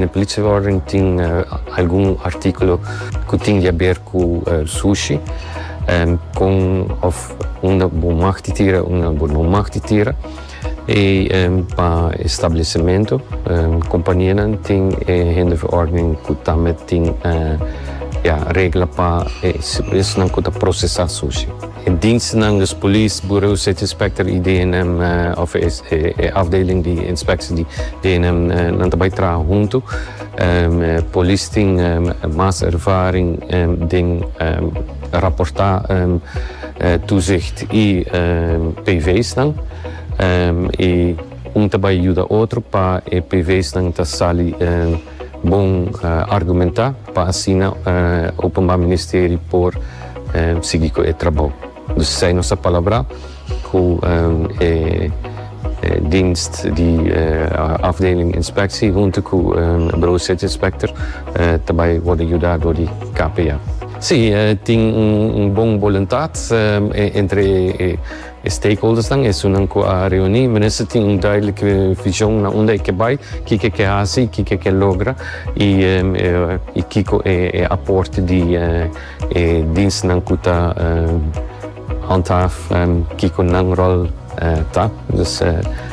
Den Politieverordening tin algun artíkulo ku tin di a ber ku sushi, kon òf unda bo mag di tira i unda bo no mag di tira. I pa e stablesimentu, kompanianan tin e hinderverordening ku ta met tin regla pa esnan ku ta prosesá sushi. E dinsnan dus polis, Bureau City Inspector y DNM of e afdeling di inspectie di DNM nan ta bay traha hunto. Polis tin mas ervaring den raporta toezicht y PVsnan y un ta bay yuda otro pa e PVsnan ta sali. Bon argumenta pa asina Openba Ministeri por sigui cu e trabou. Dus esai nos a palabrá cu e dienst di Afdeling Inspectie hunto cu Bureau-Sitsinspector ta bay wordo yuda dor di KPA. Sí, tin un bon boluntad entre e. E stakeholdersnan, esunnan ku a reuní, mester tin un duidelijk vishon na unda e ke bai, kiko e ke hasi, kiko e ke logra i kiko e aporte di e dienstnan ku ta handhaaf kiko nan ròl ta. Dus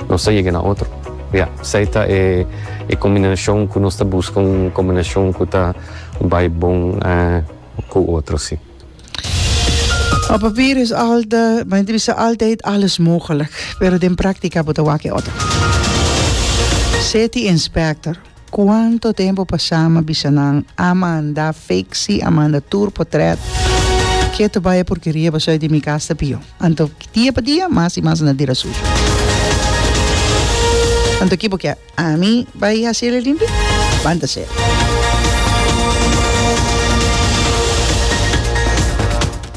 nos ta yega na otro. Ya, esei ta e kombinashon ku nos ta buska, un kombinashon ku ta bai bon ku otro, si. Op papier is alta, ma enta bisa altijd alles mogelijk, pero den práctica bo ta wak e otro. City inspector, Cuanto tempo pasá m'a bisa nan a manda fiksi, a manda tur potret, keto bai e porkeria paso ey di mi cas ta pio. Anto dia pa dia mas i mas na dira sucio. Anto ki bo kier? Ami bai hasi el limpi? Banta ser.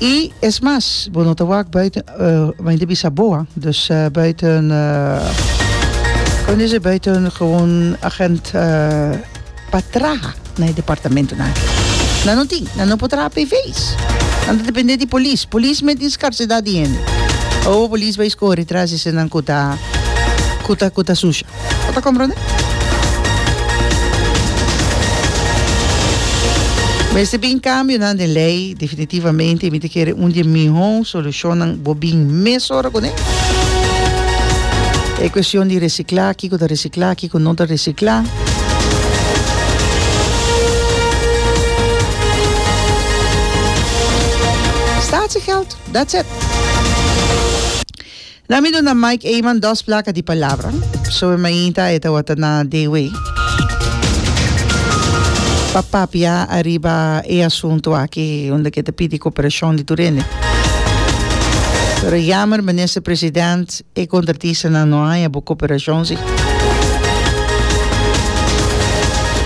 I es mas, bo no ta wak buiten, mi ta bisa boa, dus buiten, kon ta kende buiten gewoon agent. pa traha na e departamentonan. Nan no tin, nan no por traha p'e vees. Nan ta dependé di polis. Polis mete tin skarsedat di hende. Awo polis bai skohe detras di esnan ku ta ku ta ku ta susha. Bo ta komprondé? Mester bin kambionan den lei. Definitivamente mi ta kere un di e mihó solushonnan bo bin mes ora kuné. E kuestion di resiklá, kiko ta resiklá. Reciclá, kiko no ta reciclá? Statiegeld, that's it. Na mi duna Mike Eman dos placa di palabra. So mi mainta e tawata na de way pa papia ariba e asunto aki unda ke ta pidi cooperacion di tur hende. Pero jammer minister president. E contratistanan no haña bo cooperacion si.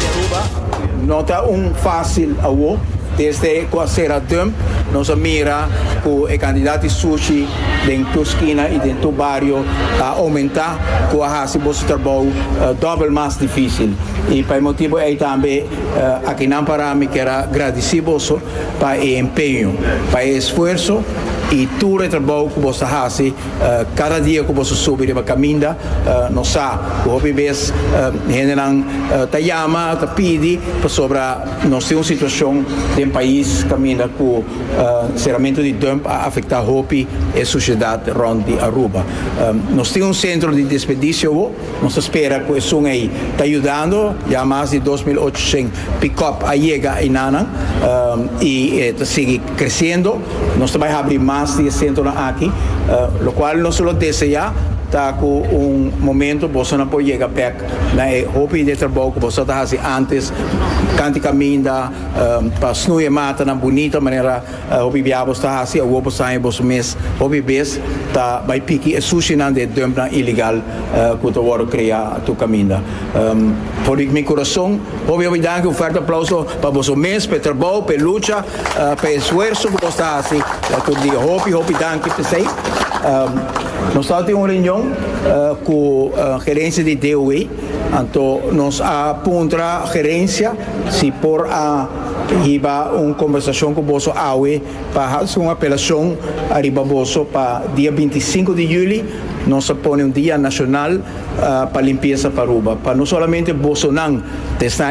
Aruba no ta un facil awo. Desde cu a cera dump nos a mira cu e cantidad di sushi den tur skina y den tur bario a aumenta cu a haci boso trabao dobel mas dificil. Y pa e motibo ey tambe akinan para mi kier a gradici boso pa e empeño, pa e esfuerzo y tur e trabao cu boso ta haci Kada dia ku boso subi riba kaminda, nos sa ku hopi bes hendenan ta yama, ta pidi pasobra nos tin un situashon den pais kaminda ku seramentu di dump a afektá hopi e sushedat rònt di Aruba. Nos tin un sentro di desperdisio awor. Nos ta spera cu esun ey ta yudando, ya mas di dos mil ochocientos pick-up a yega eyna'nan y e ta sigui creciendo. Nos ta bay habri mas di e centronan aki, locual nos ta lo desea ta cu un momento boso nan por yega bek na e hopi di e trabou cu boso ta haci antes, canti caminda pa snuye matanan bunita manera. Hopi biaha boso ta hasi awor bo saña boso mes. Hopi bes ta bai piki e sushinan di e dumpnan ilegal ku ta wòrdu krea tur kaminda. For di mi kurason, hopi hopi danki! Un fuerte aplauso pa boso mes, pa e trabou, pa e lucha, pa e esfuerso ku boso ta hasi tur dia. Hopi hopi danki p'esei. Nos tabata tin un reunion ku gerensia di DOW. Anto nos a puntra gerencia si por a hiba un combersacion cu boso awe pa haci un apelacion ariba boso pa dia binti i sinku di juli nos a pone un dia nacional pa limpieza pa Aruba pa no solamente bosonan ta esta